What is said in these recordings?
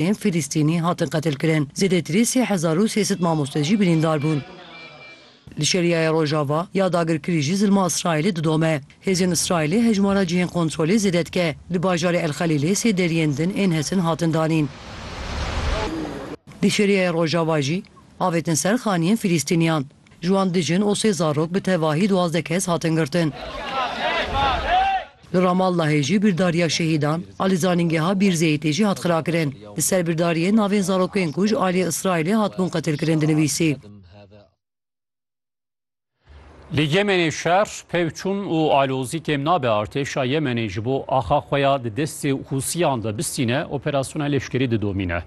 Ên Filistînî hatin qetilkirin, zêdetirî sê hezar û sê sed mamoste jî birîndar bûn. Li Şeriaya Rojava ya dagirkirî jî zilma Îsraîlê didome. Hêzên Îsraîlê hejmara cihên kontrolê zêde dike. Li bajarê El Xelîlê sê deriyên din ên hesin hatin danîn. Li Şeriaya Rojava jî avêtin ser xaniyên Filistîniyan. Ji wan du jin û sê zarok bi tevahî duwazdeh kes hatin girtin. Li Ramallahê jî bîrdariya şehîdan a li zanîngeha Bîr Zeyîtê jî hat xirakirin. Li ser bîrdariyê navên zarokên ku ji aliyê Îsraîlê hatibûn qetilkirin dinivîsî. Li Yemenê şer pevçûn û alozî kêm nabe, artêşa Yemenê ji bo axa xwe ya di destê Hûsiyan de bistîne operasyona leşkerî didomîne.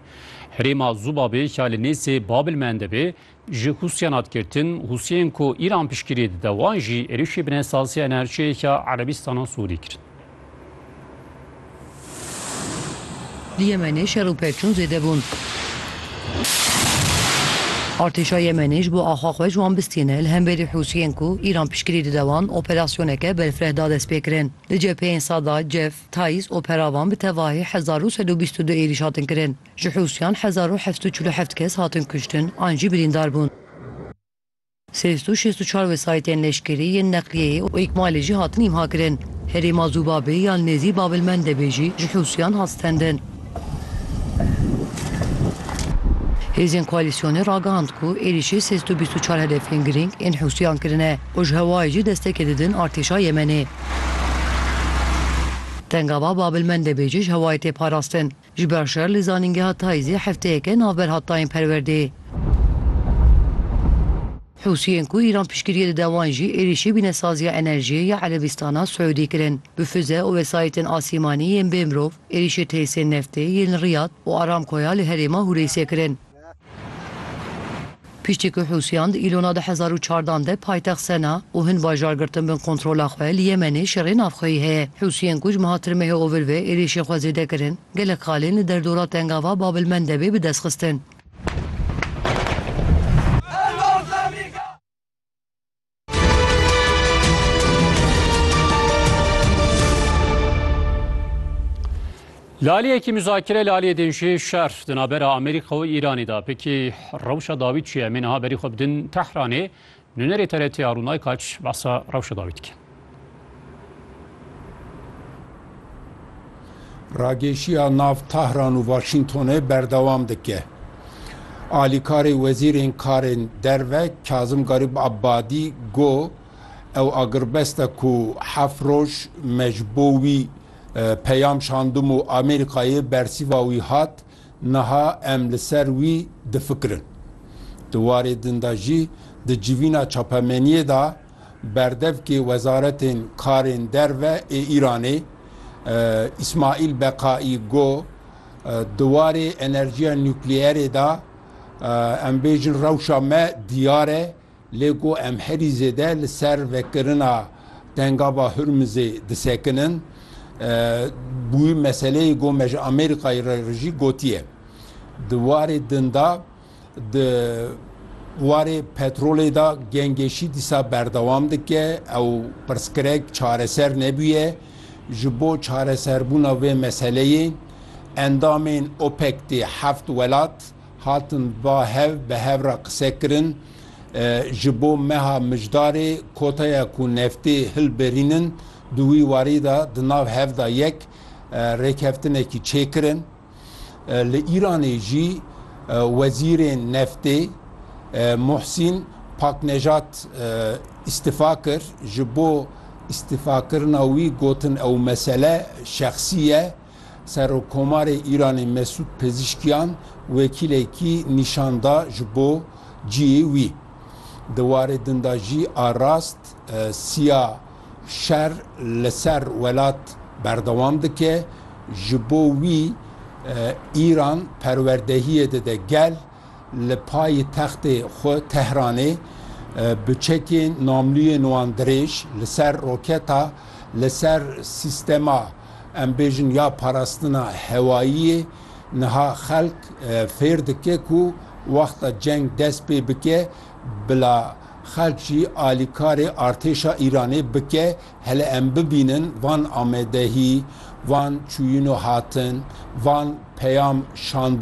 Herêma Zubabê ya li nêzê Babilmendebê Ji Hûsiyan hat girtin, Hûsiyên ku Îran piştgirî dide wan jî êrişî binêsaziya enerjiyê ya Erebîstana Sûdî kirin. Di Yemenê şer û pevçûn zêde bûn. Artêşa Yemenê ji bo axa xwe ji wan bistîne li hemberî Hûsiyên ku Îran piştgirî dide wan operasyoneke berfireh da destpêkirin. Di cepheyên Sada, Cef, Tayîz û Peravan bi tevahî hezar û sed û bîst û du êrîş hatin kirin. Ji Hûsiyan hezar û heft û çil û heft kes hatin kuştin an jî birîndar bûn. Sê sed û şêst û çar wesayîtên leşkerî, yên neqliyeyê û îkmalê jî hatin îmhakirin. Herêma Zûbabê ya li nêzî Bab el Mendebê jî ji Hûsiyan hat stendin. Hêzên koalîsyonê ragihand ku êrîşê sê sed û bîst û çar hedefên girîng ên Hûsiyan kirine û ji hewayê jî destekê didin artêşa Yemenê. Tengava Bab el Mendebê jî ji hewayê tê parastin. Ji ber şer li zanîngeha Taizê hefteyeke navber hat dayîn perwerdê. Hûsiyên ku Îran piştgiriyê dide wan jî êrîşî bînesaziya enerjiyê ya Erebîstana Siûdî kirin. Bi fize û wesayîtên asîmanî yên bêmirov êrîşê tesisên neftê yên li Riyad û Aramcoya li herêma Hûreysê kirin. Piştî ku Hûsiyan di îlona du hezar û çardeh an de paytext Sena û hin bajar girtin bin kontrola xwe, li Yemenê şerê navxweyî heye. Hûsiyên ku ji meha tirmehê ovilvê êrişên xwe zêde kirin, gelek xalên li derdora tengava Bab el Mendebê bi dest xistin. Laliyekî muzakere laliyê dênjê şer di navbera Amerîka û Îranê da pekî rewşa dawî çi ye? Em ê niha berî xwe bidin Tehranê. Nûnerê TRT Arûn Aykaç behsa rewşa dawî dike. Ragêşiya nav Tahran û Waşîngtonê berdewam dike. Alîkarê wezîrên karên derve Kazim Garîb Abadî got ew agirbest e ku heft roj me ji bo wî peyam şandim û Amerîkayê bersîva wî hat, niha em li ser wî difikirin. Di warê din de jî di civîna çapemeniyê de, Berdevkê Wezaretên Karên Derve ê Îranê Îsmaîl Beqaî got, Di warê enerjiya nukleerê de em bêjin rewşa me diyar e lê ku em herî zêde li ser vekirina Tengava Hurmizê disekinin bûye meseleyê ku me ji Amerîkayê re jî gotiye. Di warê din de Di warê petrolê de gengêşî dîsa berdewam dike. Ew pirsgirek çareser nebûye. Ji bo çareserbûna vê meseleyê endamên OPEC tê heft welat hatin va hev bi hev re qise kirin. Ji bo meha mijdarê koteya ku neftê hilbirînin di wî warî de di nav hev de yek rêkeftinekî çêkirin. Li Îranê jî wezîrên neftê Muhsîn Paknejat îstifa kir. Ji bo îstifakirina wî gotin ew mesele şexsî ye. Serokkomarê Îranê Mesûd Pezîşkiyan wekîlekî nîşan da ji bo cihê wî. Di warê din de jî a rast, Sîya. Şer li ser welat berdewam dike, ji bo wî Îran perwerdehiyê dide gel, li payitextê xwe Tehranê bi çekên namlûyên wan dirêj li ser roketa li ser sîstema em bêjin ya parastina hewayiyê niha xelk fêr dike ku wexta ceng dest pê bike bila Xelk jî alîkarê artêşa Îranê bike, hele em bibînin van amedehî, van çûyîn û hatin, van peyam şandin.